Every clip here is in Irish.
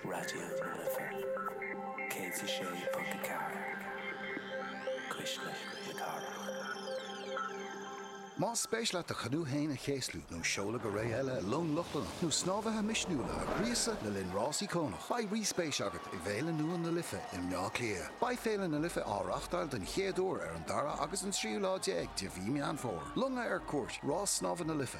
Raidió na Life 106.4 Cuisle na Cathrach. Más spéis leat do chanú aonair a chéaslú nó seoladh go réidh eile i long Lochlannach nó snámhaithe misniúla a ghríosadh le linn Rásaí Cónach, beidh rí-spéis agat i bhféile nua na Life i mBleá Cliath. Beidh Féile na Life á reáchtáil den chéad uair ar an dara agus an tríú lá déag de mhí Mheán Fómhair. Longa ar cuairt, Rás Snámha na Life.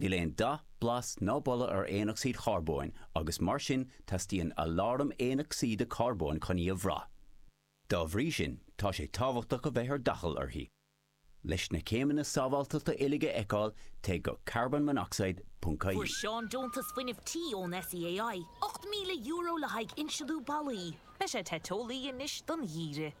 Níl aon dath, blas ná boladh ar aonocsaíd charbóin agus mar sin teastaíonn aláram aonocsaíde carbóin chun í a bhrath. Dá bhrí sin tá sé tábhachtach a bheith ar d'fhaichill uirthi. Leis na céimeanna sábháilteachta uilig a fheiceáil téigh go carbonmonoxide.ie. Fuair Seán deontas fuinnimh tí ón SEAI, €8,000 le haghaidh insealú ballaí. Beidh sé te teolaí anois don gheimhreadh.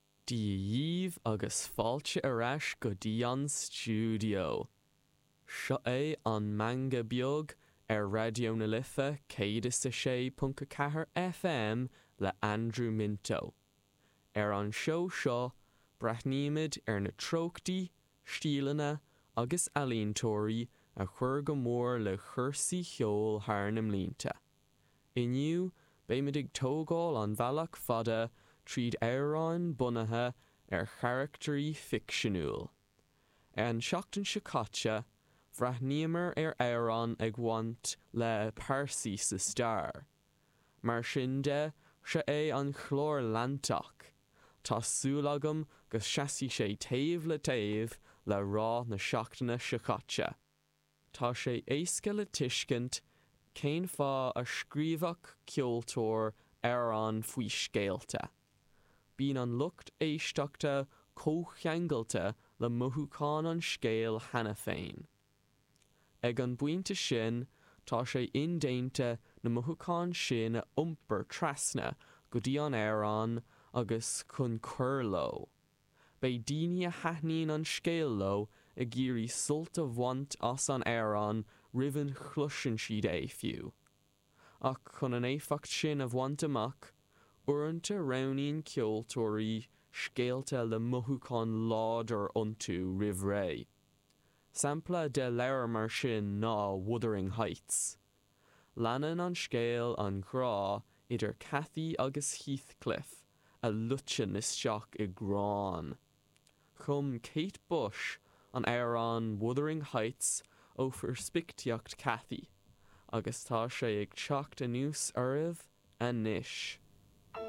Dia dhíobh agus fáilte ar ais go dtí an stiúideo. Seo é An Meangadh Beag ar Raidió na Life 106.4 FM le Andrew Minto. Ar an seó seo breathnaímid ar na treochtaí, stíleanna agus ealaíontóirí a chuir go mór le cúrsaí cheoil thar na mblianta. Inniu beimid ag tógáil an bhealach fada tríd amhráin bunaithe ar charachtairí ficseanúil. An tseachtain seo caite, bhreathnaíomar ar amhrán ag bhaint le pearsaí sa stair. Mar sin de, seo é an chlár leantach. Tá súil agam go seasfaidh sé taobh le taobh le rath na seachtaine seo caite. Tá sé éasca le tuiscint cén fáth a scríobhfadh ceoltóir amhrán faoi scéalta. Bíonn an lucht éisteachta comhcheangailte le mothúcháin an scéil cheana féin. Ag an bpointe sin, tá sé indéanta na mothúcháin sin a iompar trasna go dtí an amhrán agus chun cur leo. Beidh daoine a thaitníonn an scéal leo ag iarraidh sult a bhaint as an amhrán roimh a chloiseann siad é fiú. Ach chun an éifeacht sin a bhaint amach, uaireanta roghnaíonn ceoltóirí scéalta le mothúchán láidir iontu roimh ré. Sampla de leabhar mar sin ná Wuthering Heights. Leanann an scéal an ghrá idir Cathy agus Heathcliff a loiteann isteach i ngráin. Chum Kate Bush an t-amhrán Wuthering Heights ó pheirspictíocht Cathy agus tá sé ag teacht anuas oraibh anois.